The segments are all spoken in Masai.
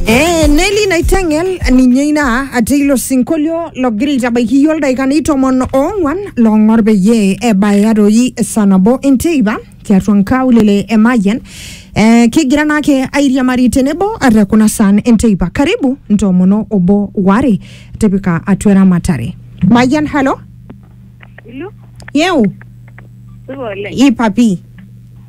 Eh, Nelly Naitengel ninye ina ati ilo sinkolio logira aitabaiki iyie oldaikani tomon oong'wan long'or peyie ebaya doi saa nabo enteipa tiatua nkaulele e Mayian eh, kigira naake airiamari tenebo ate kuna saan enteipa karibu ntoomono obo ware tipika atua eramatare Mayian halo Hello, yeu supa oleng. ipapi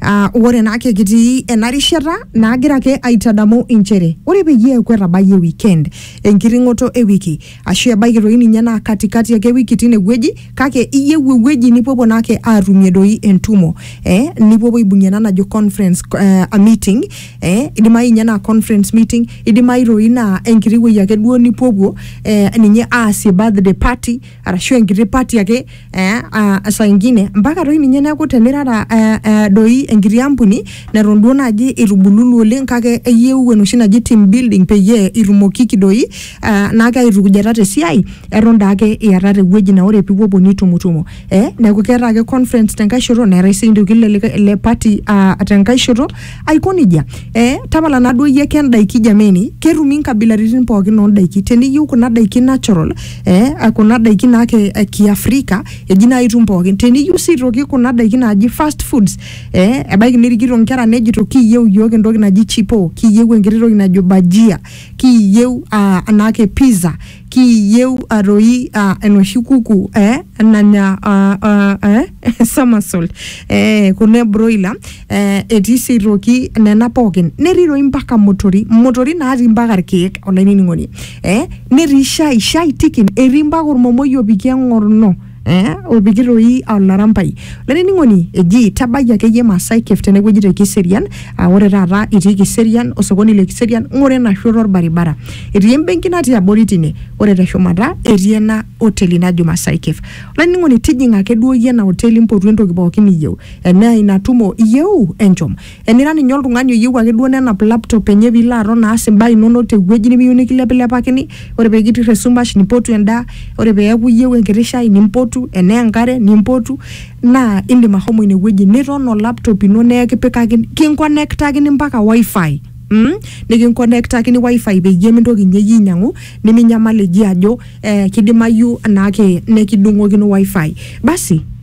Ah, ore naake kitii ena rishata naagira ake aitadamu inchere ore peyie eeku etabayie weekend enkiting'oto e wiki ashu ebaiki doi ninye naa katikati ake wiki tine wueji kake iyieu ewueji nipuopuo naake aatumie doi entumo eh, nipuopuo aibung'ie ena najo conference eh, a meeting eh, idimayu ninye naa conference meeting idimayu doi naa enkiti wueji ake duo nipuopuo eh, ninye aasie birthday party arashu enkiti party ake eh, uh, saa ingine mpaka toi ninye neeku tenirara eh, eh, doi enkiti ampuni neton duo naaji itubululu oleng kake eyieu enoshi naji team building peyie itumokiki doi eh, naake aitukujata tesiai eton daake iatata ewueji naa ore pipuopuo nitumutumo eh, neeku keeta ake conference tenkae shoto neetae sii ntokitin le likae- le party uh, tenkae shoto aiko nejia eh, tapala naduo iyie ake endaiki jameni ketumi inkabilaritin pookin ondaiki teniyieu kuna daiki natural eh, ah, kuna daiki naa ke- eh, kiafrika eji naa itum pookin teniyieu sii toki kuna daiki naaji fast foods eh, ebaiki nirikito nkera nejito kiyieu iyiook entoki naji chipo kiyieu enkiti toki najo bajia kiyieu ah, anaake pizza Kiiyieu a toi aa enoshi kuku ee nanya aa aa ee somersault ee kuna e broiler ee etii sii aitoki nena pookin, netii toi mpaka motori motori natii mpaka irkeek olainining'oni ee netii shai, shai tiken, etii mpaka ormomoi opiki eng'orno. eh, olpikir doi aa olarampai olainining'oni eji tabai akeyie Maasai Cave tenewueji te Kiserian aa ore taata itii Kiserian osokoni le Kiserian ng'ura ena shoto orbaribara etii embenki natii abori tine ore teshumata etii ena oteli najo Maasai Cave olainining'oni tijing'a ake duo iyie ena oteli mpotu entoki pookin niyieu enaa ina tumo iyieu enchom Enira ninye oltung'ani oyieu ake duo nenap laptop enye piilo aton aas imbaa inonok tewueji nimiyieu nikilepilepakini, ore pekitirr esumash nimpotu endaa, ore peeku iyieu enkiti shai nimpotu, enaa enkare nimpotu naa indim ashomo ine wueji niton o laptop ino nekipikakini, kinkonektakini mpaka WiFi mm nikinkonektakini WiFi peyie mintoki ninye iyie ainyang'u niminyamal eji ajo ee kidimayu naake nekidung'okino WiFi. Basi.